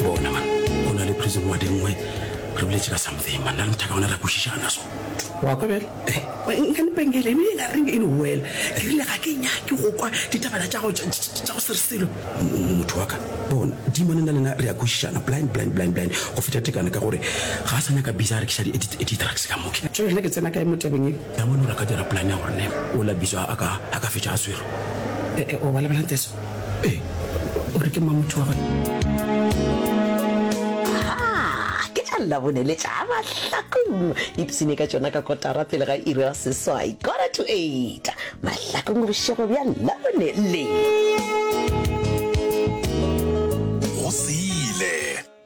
bona man o na le prison wa dingwe re boletse ka something man na le mothaka ona ra kwešišana so wa kwa bjale nkanepengele ebile ka reng in well ke rile ga ke nyake go kwa ditabana tša go se re selo motho wa ka bona dimone na lena re ya kwešišana blind blind blind blind go feta tekane ka gore ga a sa nyaka bisa a rekiša di-drugs ka moke tso lena ke tsena kae mo tabeng e ya mone gore a ka dira plan ya gore ne o la bisa a ka fetša a swere o ba lebelang teso Ee, o re ke mang motho wa ke tša labone le tša mahlakong ipsene ka tšona ka kotara pele ga iri ya seswai quarter to eight mahlakong bošego bja labone le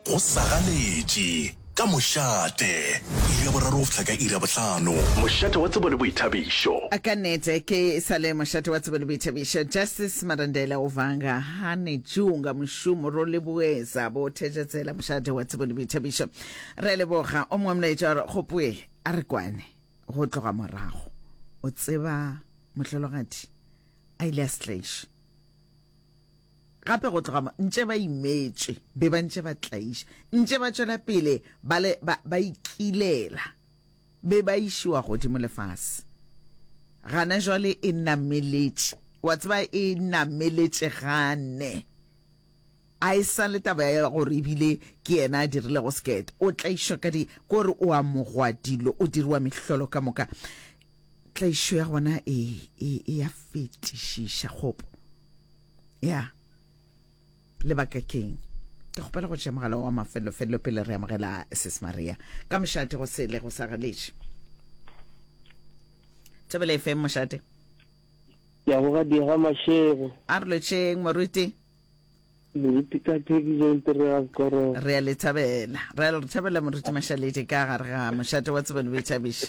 Go sa ganetše, ka mošate. Iri ya boraro go fihla ka iri ya bohlano. Mošate wa tsebo le boithabišo. Ka nete ke sa le mošate wa tsebo le boithabišo. Justice Marandela o vanga ha ne junga mošomo ro leboeza bo Thejetsela mošate wa tsebo le boithabišo. Re a leboga. O mongwe molaetša wa re Gopoe a re kwane go tloga morago. O tseba mohlologadi a ile a stlaiše. Gape go tloga mo ntše ba imetše, be ba ntše ba tlaiša, ntše ba tšwela pele ba le ba, ba ikilela, be ba išiwa godimo lefase. Gana jwale e nameletše, wa tseba, e nameletše gane. A e sa le taba ya gore ebile ke yena a dirilego sekete, o tlaišwa ka di, kore o amogwa dilo, o diriwa mehlolo ka moka. Tlaišo ya gona e, e, e ya fetišiša, kgopo. ya lebaka keng ke kgopela go tšea mogala wa mafelofelo pele re amogela sis maria ka mošate go sele go sa galetše thobele fm mošate ya go ga diega mašego a re lotšheng moruti moruti ka thekisong terega korong re a le thabela re a le thabela moruti mašaledi ka gare ga mošate wa tsebelo o ithabiša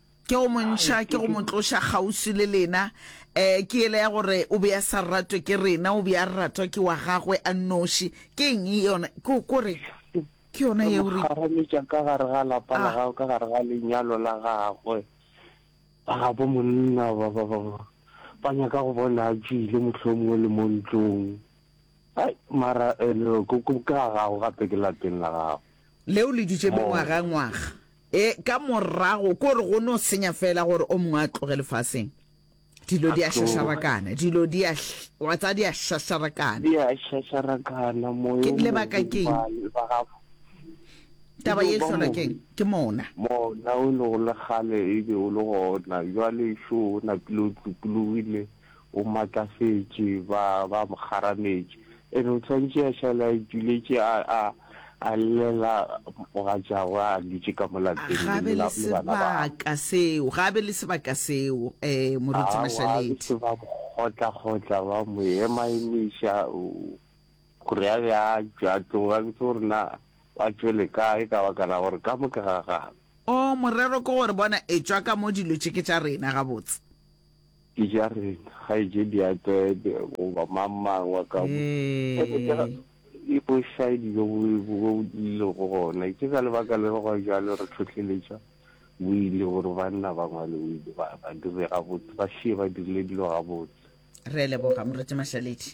Ke go mo ntšha, ke go mo tloša kgauswi le lena. Um ke yela ya gore o be a sa ratwe ke rena, o be a ratwa ke wa gagwe a nnoši. Ke eng yona? Ko, ko re, ke yona Re mo yeo re. kgarametša ka gare ga lapa la Ah. gagwe, ka gare ga lenyalo la gagwe. Ba gabo monna ba, ba, ba, ba, ba nyaka go bona a tšwile mohlomongwe le mo ntlong. Ai, mara, eh, no, ko, ko, ke ga gago gape ke lapeng la gago. Leo le dutše Mo. mengwaga-ngwaga. E, ka morago, ke gore go no senya fela gore o mongwe a tloge lefaseng. Dilo di a šašarakana, dilo di a, wa tsa di a šašarakana. Di a šašarakana, moyo o lebaka keng? Ba gago. Taba ye hlola keng? Ke mona. Mona o le go le kgale e be o le gona, jwale šo o napile o tlokologile, O matlafetše, ba, ba mo kgarametše. And o swantše a šale a ituletše, a, a, a llela mogatšagwe a dutše ka mo lapeng le, le, le bana ba gagwe. Ga a be le sebaka seo, ga a be le sebaka seo, eh, Moruti Mashaledi. Aowa, ba mo kgotla-kgotla, ba mo ema-emiša, gore a be a tšwe a tloge, a bitše gore na a tšwele kae, ka baka la gore ka mo ke ga gabo. Oh, morero ke gore, bona, etšwa ka mo, dilo tše ke tša rena, gabotse. Ke ja reng kgaetšedi a tsebe goba mang mang wa ka mo e ke tša e bo shaedi jo bo bo ile go gona ke ka lebaka le go jalo re tlhotlheletša bo ile gore banna ba ngwale o ile ba ba dire ga botse ba šie ba dirile dilo ga botse. Re a leboga Moruti Mashaledi.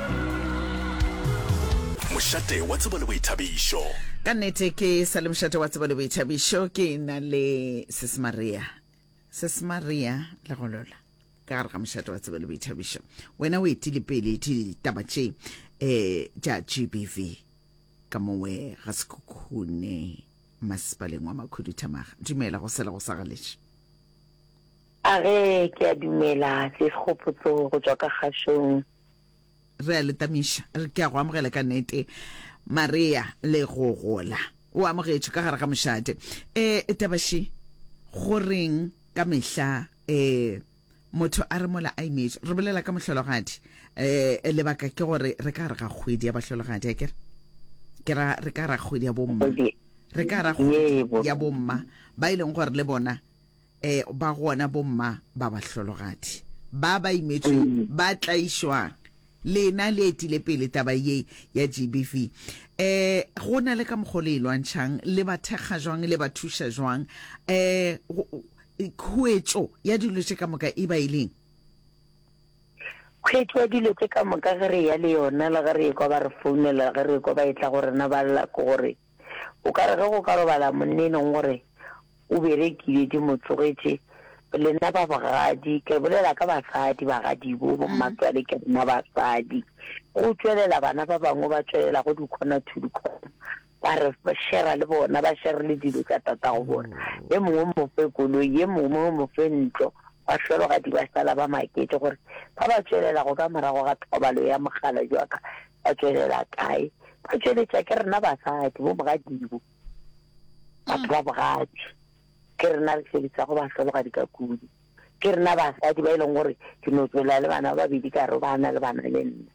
mošate wa tsebo le boithabišo ka nnete ke sa le mošate wa tsebo le boithabišo ke na le sesmaria sesmaria le golola ka gare ga mošate wa tsebo le boithabišo wena o etile pele ditaba tše um eh, tša g b v ka mongwe ga sekhukhune masepaleng wa makhuduthamaga dumela go sela go sa galetše a re ke a dumela se segopotso go tswa ka kgašong Re a le tamiša, re ke a go amogela ka nete, Maria, le go gola. O amogetšwe ka gare ga mošate. E, tabaši, go reng ka mehla, e, motho a re mola a imetše, re bolela ka mohlologadi, e, lebaka ke gore re ka gare ga kgwedi ya bahlologadi, a ke re? Ke ra, re ka gare ga kgwedi ya bomma. Re ka gare ga kgwedi ya bomma, ba e leng gore le bona e ba gona bomma ba bahlologadi ba ba imetsweng ba tlaišwang. Lena le etile pele taba ye ya GBV. E go na le ka mokgwa le e lwantšhang, le ba thekga jwang, le ba thuša jwang, e khuetšo ya dilo tše ka moka e ba e leng? Khuetšo ya dilo tše ka moka ge re eya le yona le ge re ekwa ba re founela, ge re ekwa ba etla go rena ba lla ke gore, O ka re ge go ka robala monna e leng gore o berekile di mo tsogetše, le nna ba bogadi, ke bolela ka basadi bagadibo, bo mmatswale ke nna basadi, go tšwelela bana ba bangwe ba tšwelela go dikhona to dikhona, ba re shera le bona, ba shere le dilo tša tata go bona, ye mongwe mo fe koloi, ye mongwe mo fe ntlo, ba hlologadi ba sala ba maketše gore ba ba tšwelela go ka morago ga thobalo ya mogala jwaka Ba tšwelela kae? Ba tšweletša ke rena basadi, bo mogadibo, batho ba bogadi. Ke rena re sebetsago bahlologadi ka kudu. Ke rena basadi ba e leng gore ke no tšwelela le bana ba babedi ka re ba na le bana le nna.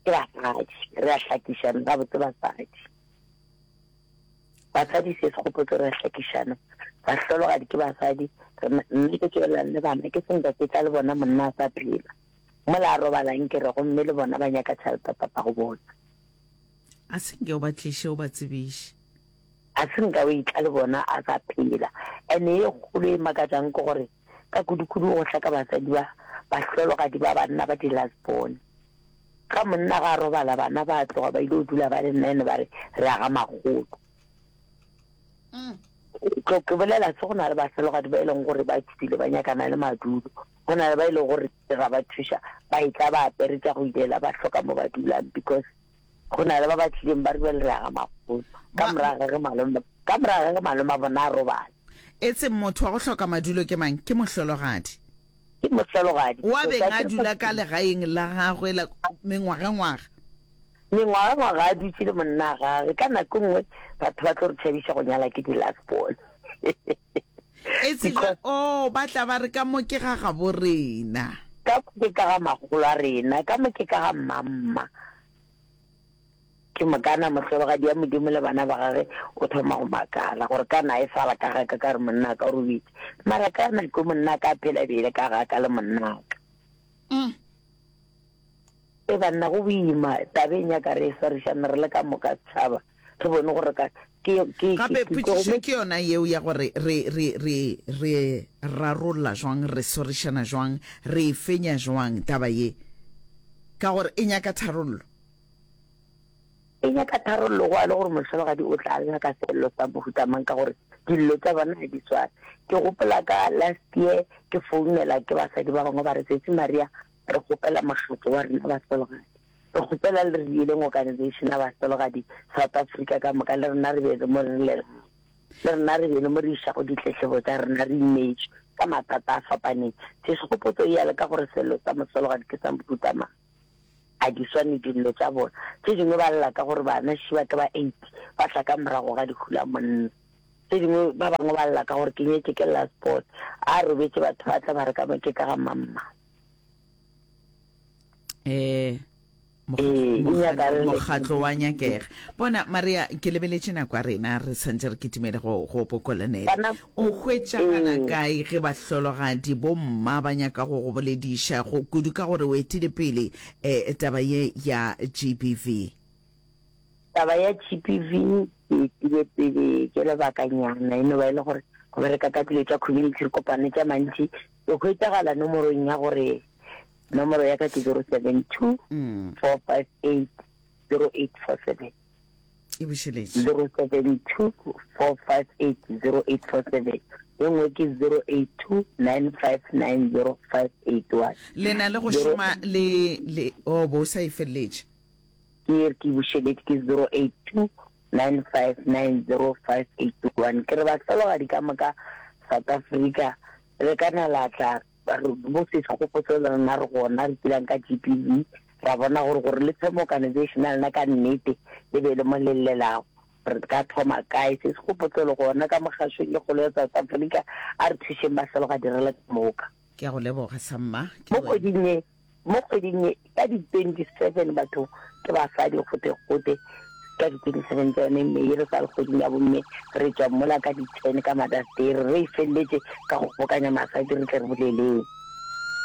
Ke basadi, re a hlakišana gabotse basadi. Basadi se se gopotse re a hlakišana. Bahlologadi ke basadi, mme ke tšwelelang le bana, ke senka ke tla le bona monna a sa phela. Mola a robala nke re gomme le bona ba nyaka tšhalta papa go botsa. A se nke o ba tliše o ba tsebiše. A se nka o itla le bona a sa phela. Ene ye kgolo e makatšang ke gore ka kudukudu go hlaka basadi ba bahlologadi ba banna ba di last born. Ga monna ga a robala bana ba tloga ba ile o dula ba le nna ene ba re re aga magolo. Tlo ke bolela se go na le bahlologadi ba e leng gore ba tšhupile ba nyakana le madulo. Go na le ba e le gore ra ba thuša ba e tla ba apere tša go ilela ba hloka mo ba dulang because go na le ba ba tlileng ba rubele re aga magolo ka moraga ge malome ka moraga ge malome a bona a robala e tseng motho wa go hloka madulo ke mang ke mohlologadi ke mohlologadi wa beng a dula ka legaeng la gagwe la mengwagengwaga mengwagengwaga a dutse le monna gage ka nako e nngwe batho ba tlo re tšhabiša go nyala ke di-last ball e se ba Because- oh ba tla ba re ka mo ke ga gabo rena ka ke ka ga magolo a rena ka mo ke ka ga mmamma ke mokana mohlologadi ya modimo le bana ba gage o thoma go makala gore ka na e sala ka ga ka ka re monna ka o robetse mara ka nako monna ka phela bele ka ga ka le monna ka Umm. E banna go boima tabeng ya ka re e swarišana re le ka moka setšhaba re bone gore ka ke ke gape ke potšišo tlogome ke yona yeo ya gore re re re re rarolla jwang re swarišana jwang re e fenya jwang taba ye ka gore e nyaka tharollo. E nyaka tharollo go a le gore mohlologadi o tla nyaka seello sa mohuta mang ka gore dillo tša bona ga di swane. Ke gopola ka last year ke founela ke basadi ba bangwe ba re Sesi Maria re kgopela mokgatlo wa rena bahlologadi re kgopela le re dieleng organization ya bahlologadi South Africa ka moka le rena re be le mo re le rena re be le mo re išago ditletlebo tša rena re ineetše ka mathata a fapaneng. Sešegopotso e ya le ka gore seello sa mohlologadi ke sa mohuta mang. a di swane dillo tša bona tše dingwe ba lla ka gore bana shi ba ke ba eight ba tla ka morago ga dihula monna tše dingwe ba bangwe ba lla ka gore ke nyetse ke last sport a robetse batho ba tla ba re ka mo ke ka ga mamma eh mokgatlo wa nyakega bona maria ke lebeletše nako ya rena re tshwanetse re kitimele go pokolanela O hwetšagala kae ge bahlologadi, bomma, ba nyaka go go bolediša, go kudu ka gore o etile pele um taba ye ya GBV? Taba ya GBV ke etile pele ke lebakanyana, e no ba e le gore go bereka ka dilo tša community, re kopane tša mantši, ke hwetšagala nomorong ya gore nomoro ya ka ke zero seven two four five eight zero eight four seven. e bušeletše 0724580847 e nngwe ke 0829590581 le na le go šoma le le o bo o sa e feleletše ke e re ke bušeletše ke 0829590581 ke re bahlologadi ka moka south africa le ka nalatla Ba re, Mo sesha go potso le rena re gona re kilang ka GPV, ra bona gore gore le thome organization ya lena ka nnete e be le mo le llelago, re ka thoma kae? Sese go potso le gona ka Mokgašong e kgolo ya South Africa, a re thušeng ba hlolo ga direla ka moka. Ke a go leboga sa mma. Ke Mo wena. kgweding e, Mo kgweding ye ka di 27 batho ke basadi gote-gote ka di 27 tsa yone mme ye re sa le kgweding ya bomme re tswa mola ka di 10 ka Mother's Day re re e feleletše ka go kgobokanya masadi re tle re boleleng